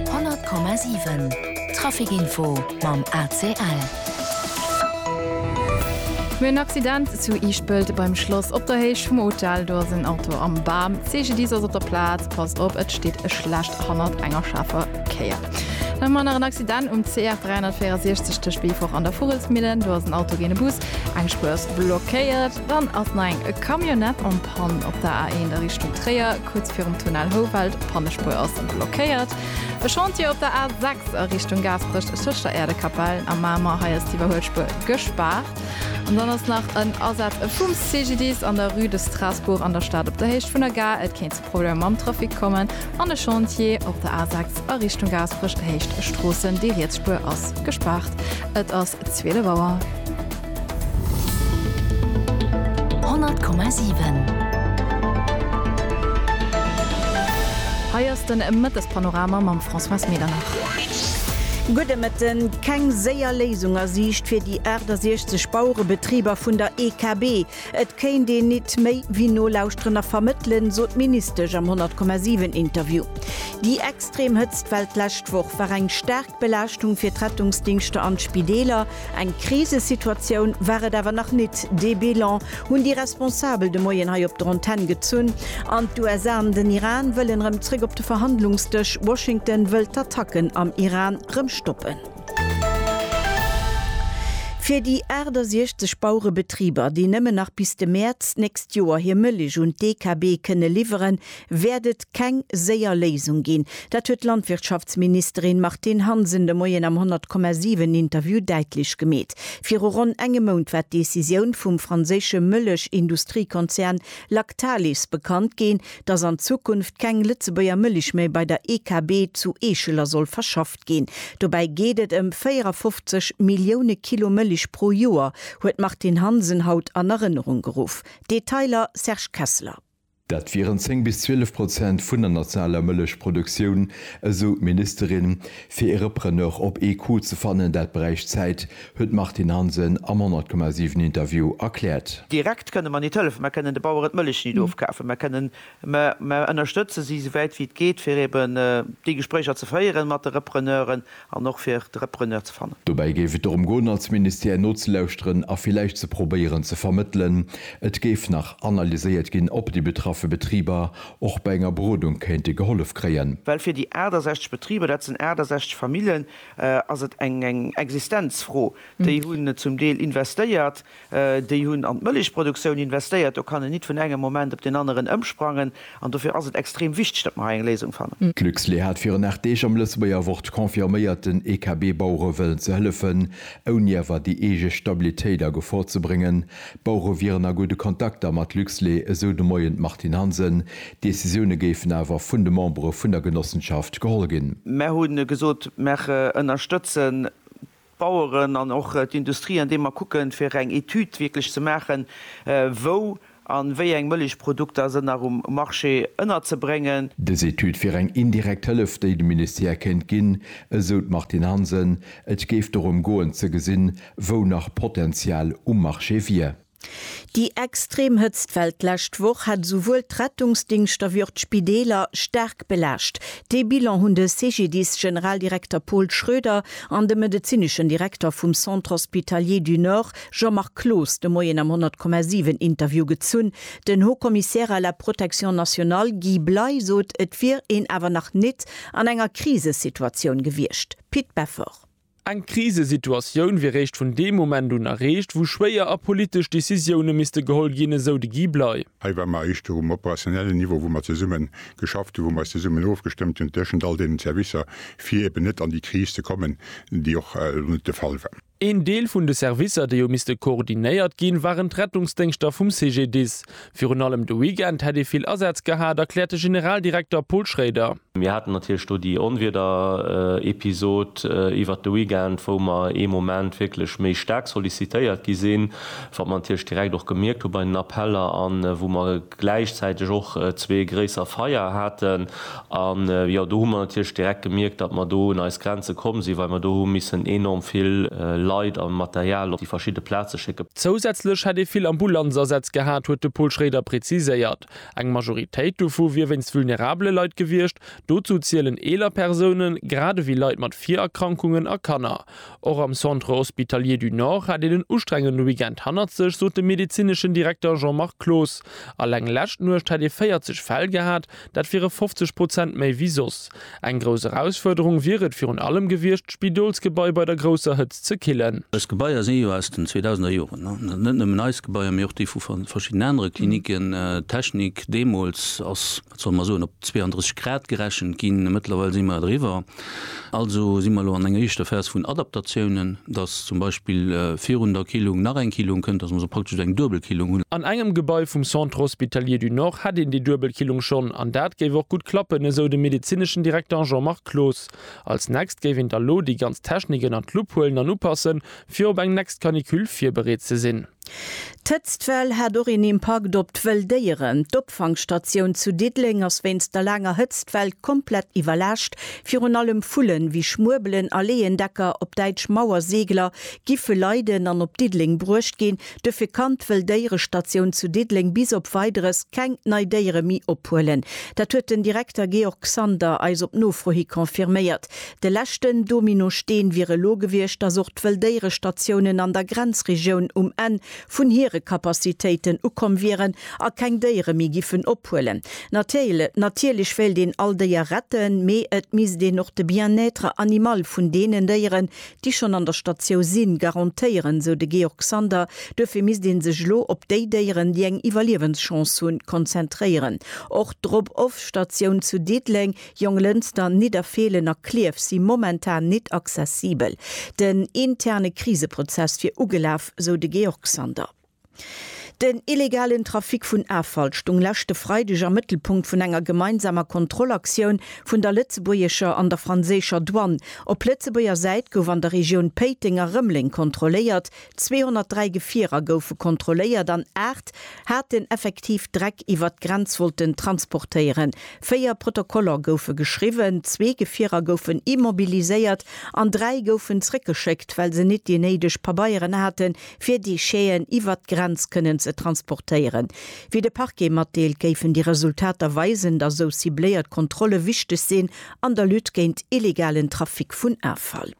100,7 Traficinfo mam ACL. Mir hunn en Accident zu Iischpelt beim Schloss. Op der Héicht vum Hotel, do ass en Auto am Bam. D'CGDIS ass op der Plaz. Passt op, et steet e Schlecht hannert enger schaarfer Kéier. Dann hu mer nach en Accident um CR 364 tëscht Beefort an der Vugelsmillen. Do ass en Auto géint e Bus. Eng Spuer ass blockéiert. Dann ass nach eng Camionnette en panne op der A1 a Richtung Tréier, kuerz virum Tunnel Houwald. D'Pannespuer ass blockéiert. E Chantier op der A6 a Richtung Gaasperech tëscht der Äerdekapell a Mamer, hei ass d'Iwwerhuelspuer gespaart. An dann ass nach en Asaz vum CGDIS an der Rue de Strasbourg an der Stad op der Héicht vun der Gare. Et kéint zu Problemer mam Trafic kommen. An e Chantier op der A6 a Richtung Gaasperech, Héicht Stroossen, déi riets Spuer ass gespaart. Et ass. 12 Auer. 100,7. Hei ass den Mëttespanorama mam Françoise Medernach. Gudde Mëtten. Keng séier Léisung a Siicht fir déi 68 Bauerebetriber vun der EKB. Et kéint een nit méi wéi nolauschteren a vermëttelen, sot d'Ministesch am 100,7 Interview. Déi extrem Hëtztwell d'lescht Woch war eng staark. D'Belaaschtung fir d'Rettungsdingschter an d'Spideeler, eng Krisesituatioun war et awer nach nit. Dee Bilan hunn déi Responsabel de Moien hei op der Antenn gezunn. An d'USA an den Iran wëllen erëm zréck op de Verhandlungsdësch. Washington wëll d'Attacken am Iran rëm stoppen. Fir déi 68 Bauerebetriber, déi nëmmen nach bis de Mäerz d'nächst Joer hir Mëllech un d'DKB kënne liwweren, wäert et keng séier Léisung ginn. Dat huet d'Landwirtschaftsministerin Martine Hansen de Moien am 100,7 Interview däitlech gemeet. Viru ronn engem Mount war d'Decisioun vum franséische Mëllech-Industriekonzern Lactalis bekannt ginn, datt an Zukunft keng Lëtzebuerger Mëlich méi bei der EKB zu Eescheler soll verschafft ginn. Dobäi geet et ëm 54 Millioune Kilo Mëlich pro Joer, huet d'Martine Hansen haut an Erënnerung geruff. Detailer Serge Kessler. Dat wieren 10 bis 12 Prozent vun der nationaler Mëllechproduktioun, esou d'Ministerin. Fir ee Repreneur op ee Coup ze fannen, dat bräicht Zäit, huet d'Martine Hansen am 100,7 Interview erkläert. Direkt kënne mer nit hëllefen. Mer kënnen de Baueren d'Mëllech nit ofkafen. Mer kënnen, mer ënnerstëtze si souwäit wéi et geet, fir eeben déi Gespréicher ze féieren mat de Repreneuren. An och fir de Repreneur ze fannen. Dobäi géif et dorëm goen, als Ministère nozelauschteren a villäicht ze probéieren ze vermëttelen. Et géif nach analyséiert ginn, ob déi betraffe Betriber och bei enger Berodung kéinte gehollef kréien. Well fir déi 68 Betriber, dat sinn 68 Famillen, ass et eng Existenzfro. Déi hunn zum Deel investéiert, Déi hunn an d'Mëllechproduktioun investéiert. Do kann en nit vun engem Moment op deen aneren ëmsprangen. An dofir ass et extrem wichteg, datt mer hei eng Léisung fannen. D'Luxlait hat virun 8 Deeg am Lëtzebuerger Wort confirméiert, den EKB-Bauere wëllen ze hëllefen, ouni awer déi eege Stabilitéit a Gefor ze bréngen. D'Bauere wieren a gudde Kontakter mat Luxlait, esou de Moien d'Martine Hansen. D'Decisioune géifen awer vun de Membere vun der Genossenschaft geholl ginn. Mer hu gesot, mer ënnerstëtzen Baueren an och d'Industrie, andeem mer kucken, fir eng Etüd wierklech ze maachen, wou a wéi eng Mëllechprodukter sënn nach um Marché ënnerzebréngen. Dës Etüd wier eng indirekt Hëllef, déi de Ministère kéint ginn, esou d'Martine Hansen. Et géif dorëm goen, ze gesinn, wou nach Potenzial um Marché wier. Déi extrem Hëtztwell d'lescht Woch hat esouwuel d'Rettungsdingschter wéi och d'Spideeler staark belaascht. Dee Bilan hunn de CGDIS-Generaldirekter Paul Schroeder an de medezineschen Direkter vum Centre Hospitalier du Nord Jean-Marc Cloos de Moien am 100,7 Interview gezunn. Den Haut-Commissaire à la Protection nationale Guy Bley sot, et wier een awer nach nit an enger Krisesituatioun gewiescht. Pit Beffort. Eng Krisesituatioun wier réischt vun deem Moment un erreecht, wou schwéier a politesch Decisioune misste geholl ginn, esou de Guy Bley. Hei ware mer éischter um operationellen Niveau, wou mer zesumme geschafft hunn, wou mer eis zesummen ofgestëmmt hunn tëschent all deenen Servicer, fir eben net an déi Kris ze kommen, déi och elo net de Fall war. Een Deel vun de Servicer, déi hu misste koordinéiert ginn, waren d'Rettungsdéngschter vum CGDIS. Virun allem de Weekend hätt ee vill Asaz gehat, erkläert de Generaldirekter Paul Schrader. Mir haten natierlech do déi Onwiederepisod iwwert de Weekend, wou mer ee Moment wierklech méi staark sollicitéiert gi sinn, wat mer natierlech direkt och gemierkt hu bei den Appeller, a wou mer gläichzäiteg och zwee gréisser Feier haten. An, jo, do hu mer natierlech direkt gemierkt, datt mer do un eis Grenze komm sinn, well mer do hu missen enorm vill Leit a Material op déi verschidde Plaze schécke. Zousätzlech hätt ee vill Ambulanzasätz gehat, huet de Paul Schrader preziséiert. Eng Majoritéit dovu wier wéinst vulnerabele Leit gewiescht. Dozou zielen eeler Persounen, grad ewéi Leit mat Virerkrankungen a Kanner. Och am Centre Hospitalier du Nord hätt een en ustrengende Weekend hannert sech, sot de medezineschen Direkter Jean-Marc Cloos. Alleng lescht Nuecht hätt ee 40 Fäll gehat, Dat wiere 50 Prozent méi wéi soss. Eng grouss Erausfuerderung wier et virun allem gewiescht, d'Spidolsgebai bei der grousser Hëtzt ze killen. Eis Gebaier si jo aus den 2000er Joren. Net nëmmen eis Gebaier, mee och déi vu verschiddenen anere Klinicken. D'Technik deemools ass, wat solle mer soen, op 32 Grad gerechent ginn. Mëttlerweil si mer driwwer. Also si mer elo an enger éischter Phas vun Adaptatiounen, dass zum Beispill virun der Killung nach eng Killung kënnt, dass mer also praktesch eng Duebelkillung hunn. An engem Gebai vum Centre Hospitalier du Nord hätt een déi Duebelkillung schonn an dat géif och gutt klappen, esou de medezineschen Direkter Jean-Marc Cloos. Als nächst géif een da lo déi ganz Technik ënnert d'Lupp huelen an upassen, fir op eng nächst Canicule virbereet ze sinn. D'Hëtztwell hat och een Impakt op d'wëll Déieren. D'Opfangstatioun zu Diddeleng ass wéinst der laanger Hëtztwell komplett iwwerlaascht. Virun allem Vullen wéi Schmuebelen a Leeëndecker, op Däitsch Mauerseegler, giffe leiden an op Diddeleng bruecht ginn. Duerfir kann d'wëll Déierestatioun zu Diddeleng bis op Weideres keng nei Déiere méi ophuelen. Dat huet den Direkter Georg Sander eis op Nofro hi confirméiert. De leschten Dominosteen wier elo gewiescht, dass och d'Wëlldéierestatiounen an der Grenzregioun um Enn vun hire Capacitéiten ukomm wieren a keng Déiere méi giffen ophuelen. Natirl, natierlech wéilt een all Déier retten, mee et misst een och de Bien-être animal vun deenen Déieren, déi schonn an der Statiou sinn, garantéieren, sou de Georg Sander. Duerfir misst ee sech elo op déi Déieren, déi eng Iwwerliewenschance hunn, konzentréieren. Och d'Drop-off-Statioun zu Diddeleng Jonglënster, Nidderfeelen a Klierf si momentan nit accessibel. Den interne Kriseprozess wier ugelaf, sou de Georg Sander. Den illegalen Trafic vun Affall stung leschte Freideg am Mëttelpunkt vun enger gemeinsamer Kontrollaktioun vun der lëtzebuergescher an der franséischer Douane. Op Lëtzebuerger Säit gouf an der Regioun Péiteng a Rëmleng kontrolléiert, 203 Gefierer goufe kontrolléiert an aacht haten effektiv Dreck iwwert d'Grenz wollten transportéieren. Véier Protokoller goufe geschriwwen, zwee Gefierer goufen immobiliséiert an dräi goufen zréckgeschéckt, well se nit déi néideg Pabeieren hate fir Décheten iwwert d'Grenz kënnen ze transportéieren. Wéi de Parquet matdeelt, géifen déi Resultater weisen, datt esou cibléiert Kontrolle wichteg sinn an der Lutte géint illegalen Trafic vun Affall.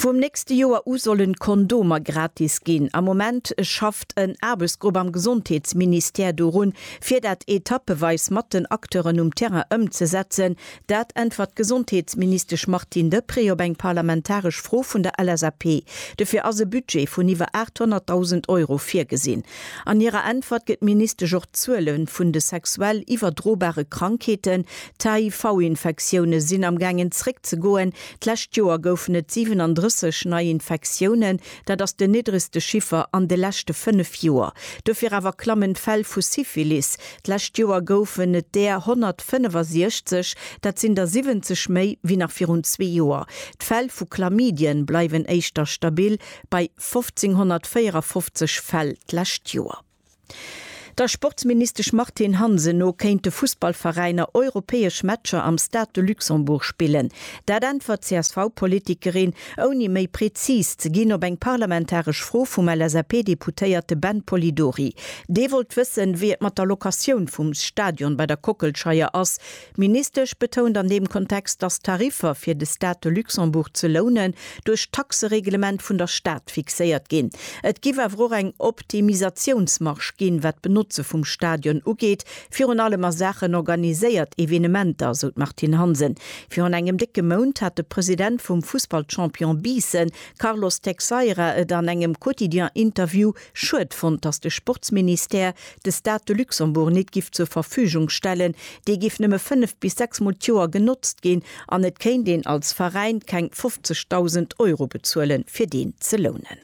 Vum nächste Joer u solle Kondomer gratis ginn. Am Moment schafft en Aarbechtsgrupp am Gesondheetsministère dorun, fir dat etappeweis mat den Acteuren um Terrain ëmzesetzen. Dat äntwert d'Gesondheetsministesch Martine Deprez op eng parlamentaresch Fro vun der LSAP. Dofir ass e Budget vun iwwer 800.000 Euro virgesinn. An hirer Äntwert gëtt d'Ministesch och d'Zuele vun de sexuell iwwerdrobare Krankheeten, D'HIV-Infektioune sinn am gaangen zréck ze goen. D'lescht Joer goufen et 37 nei Infektiounen, dat ass den niddregste Chiffer an de leschte 5 Joer. Dofir awer klammen d'Fäll vu Syphilis. D'lescht Joer goufen et där 165, dat sinn der 70 méi wéi nach virun zwee Joer. D'Fäll vu Chlamydien bleiwen éischter stabil bei 1.554 Fäll d'lescht Joer. Der Sportsministesch Martine Hansen no kéinte Fussballveräiner europäesch Matcher am Stade de Luxembourg spillen. Dat äntwert d'CSV-Politikerin, ouni méi prezis ze ginn, op eng parlamentaresch Fro vum LSAP-Deputéierte Ben Polidori. Dee wollt wëssen, wéi et mat der Locatioun vum Stadion bei der Kockelscheier ass, D'Ministesch betount an deem Kontext, datt d'Tariffer fir de Stade de Luxembourg ze lounen, duerch d'Taxereglement vun der Stad fixéiert ginn. Et giff awer och eng Optimisatiounsmarge ginn, wat d'Benotze vum Stadion ugeet, virun allem a Saachen organiséiert Evenementer, esou d'Martine Hansen. Virun engem décke Mount hat de President vum Fussballchampion Biissen, Carlos Teixeira, et an engem Quotidien-Interview, Schued fonnt, dass de Sportsministère de Stade de Luxembourg nit giff zur Verfügung stellen. Dee giff nëmme fënnef bis sechs mol d'Joer genotzt ginn an et kéint een als Veräin keng 50.000 Euro bezuelen, fir deen ze lounen.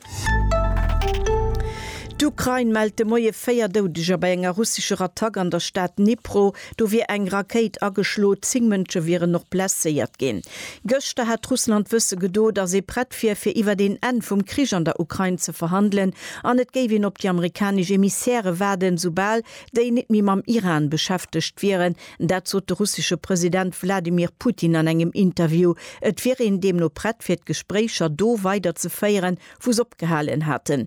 D'Ukrain mellt de Moie véier Doudeger bei enger russescher Attack an der Stad Dnipro. Do wier eng Rakéit ageschlo, zéng Mënsche wieren och blesséiert ginn. Gëschter hat Russland wësse gedo, datt ee prett wier, fir iwwer een Enn vum Krich an der Ukrain ze verhandelen an et géif een op déi amerikanesch Emissäre waarden, soubal déi net méi mam Iran beschäftegt wieren. Dat sot de russesche President Wladimir Putin an engem Interview. Et wier een deemno prett, fir d'Gespréicher do weiderzeféieren, wou s'opgehalen haten.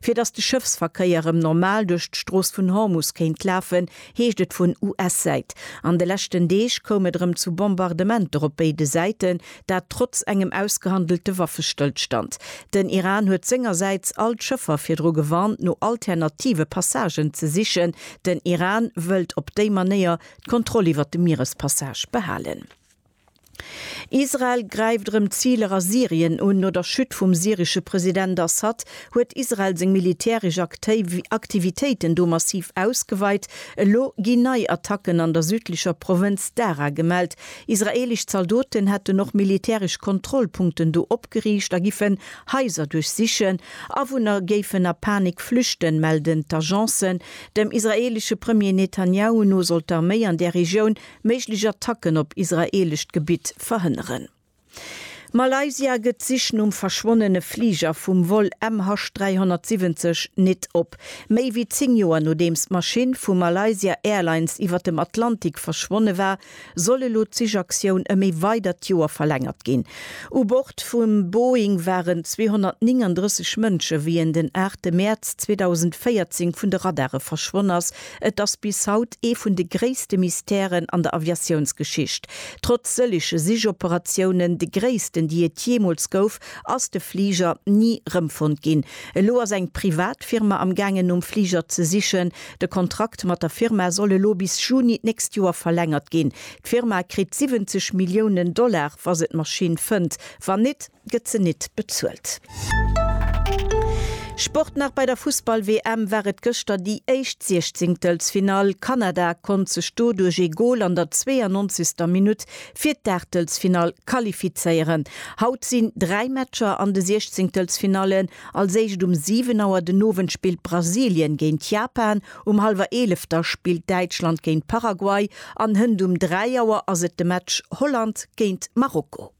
Fir datt de Schëffsverkéier erëm normal duerch d'Strooss vun Hormus kéint lafen, heescht et vun US-Säit. An de leschten Deeg koum et erëm zu Bombardementer op béide Säiten, dat trotz engem ausgehandelte Waffestëllstand. Den Iran huet sengersäits all d'Schëffer virdru gewarnt, no alternative Passagen ze sichen. Den Iran wëllt op déi Manéier d'Kontroll iwwert de Mierespassage behalen. Israel gräift erëm Ziler a Syrien un. No der Chute vum syresche President Assad huet Israel seng militäresch Aktivitéiten do massiv ausgeweit. Elo gi nei Attacken an der südlecher Provënz Daraa gemellt. Israeelesch Zaldoten hätten och militäresch Kontrollpunkten do opgeriicht a giffen Haiser duerchsichen. Awunner géifen a Panik flüchten, melden d'Agencen. Dem israeelesche Premier Netanjahu no soll d'Arméi an där Regioun Méiglech Attacken op israeelescht Gebitt verhënneren. Malaysia gëtt d'Sich nom verschwonnene Fliger vum Vol MH 370 nit op. Méi wéi 10 Joer nodeems d'Maschinn vu Malaysia Airlines iwwer dem Atlantik verschwonne war, soll elo d'Sichaktioun ëm ee weidert Joer verlängert ginn. U Bord vum Boeing waren 239 Mënsche wéi en den 8 Mäerz 2014 vun de Radare verschwonn ass, Et ass bis haut ee vun de gréisste Mystèren an der Aviatiounsgeschicht. Trotz sëllege Sichoperatiounen, de gréissten déi et jeemools gouf, ass de Fliger ni rëmfonnt ginn. Elo ass eng privat Firma am gaangen nom Fliger ze sichen. De Kontrakt mat der Firma soll elo bis Juni d'nächst Joer verlängert ginn. D'Firma kritt 70 Milliounen Dollar wa se d'Maschinn fënnt. Wann nit. gëtt se nit bezuelt. Sport nach bei der Fussball-WM war et gëschter déi éischt Siechzingtelsfinall. Kanada konnt sech do duerch ee Gol an der 92. Minutt fir d'Aachtelsfinall qualifizéieren. Haut sinn dräi Matcher an de Siechzingtelsfinallen. Als éischt um 7 Auer den Owend spillt Brasilien géint Japan, um hallwer 11 da spillt Däitschland géint Paraguay an hënt um 3 Auer ass et de Match Holland géint Marokko.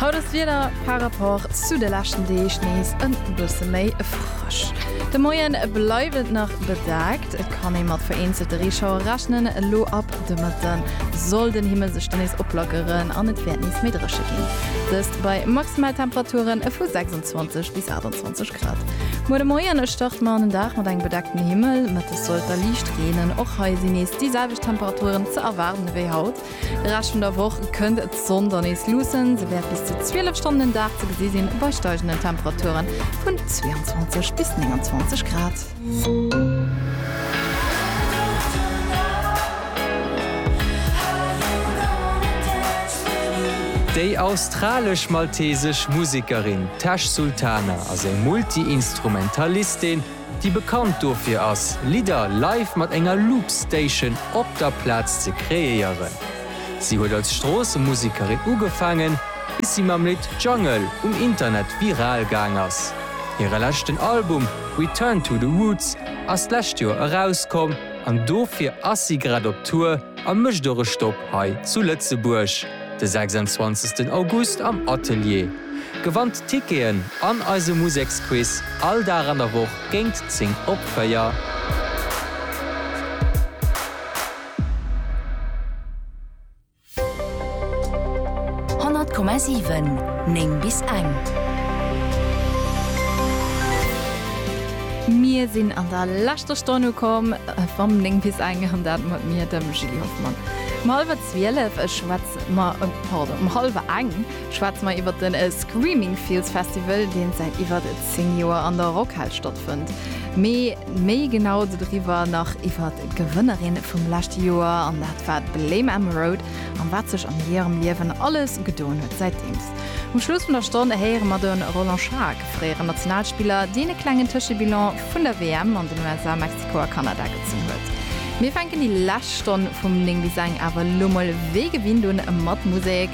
Haut ass d'Wieder par rapport zu de leschten Deeg nees e bësse méi frësch. De Moie bleift et nach bedaakt, et kann ee mat vereenzelte Reeschauer rechnen. Elo ab de Mëtte soll den Himmel sech dann nees oplackeren an et wäert nees méi dréche ginn, dëst bei Maximaltemperature vu 26 bis 28 Grad. 20 Grad. Muer de Moien starte mer an den Dag mat engem bedeckten Himmel. Mëttes sollt da liicht reenen. Och hei sinn nees déi selwecht Temperaturen ze erwaarden wéi haut. De Rescht vun der Woch kënnt d'Sonn da nees luussen. Se wäert bis zu 12 Stonnen den Dag ze gesi sinn, bei steigenden Temperaturen vun 22 bis 29 Grad. Déi australesch-maltesesch Musekerin Tash Sultana ass eng Multi-Instrumentalistin, déi bekannt dofir ass, Lidder live mat enger Loop-Station op der Plaz ze kreéieren. Si huet als Stroossemusikerin ugefaangen, bis si mam Lidd Jungle um Internet viral gaang ass. Hire leschten Album Return to the Roots ass d'lescht Joer erauskomm an dofir ass si grad op Tour a mécht och e Stopp hei zu Lëtzebuerg de 26 August am Atelier. Gewannt Ticketen an eise Museksquiz all Dag an der Woch géingt 10 op 4. 100,7 9 bis eng. Mir sinn an der leschter Stonn ukomm vam 9 bis eng an dat mat mir, dem Julie Hoffmann. Um hallwer zwielef schwätze mer, pardon, um hallwer eng, Schwätze mer iwwert de Screaming Fields Festival, deen säit iwwert 10 Joer an der Rockhal stattfënnt. Mee méi genau dodriwwer, nach iwwert d'Gewënnerin vum leschte Joer, an dat war d'Blame Emma Road, an wat sech an hirem Liewen alles gedoen huet säitdeems. Um Schluss vun der Stonn héiere mer de Roland Schaack, fréieren Nationalspiller, deen e klengen Tëschebilan vun der WM an den USA, Mexiko a Kanada gezunn huet. Mir fänken déi lescht Stonn vum 9 bis eng awer elo mol wéi gewinnt un mat Musek.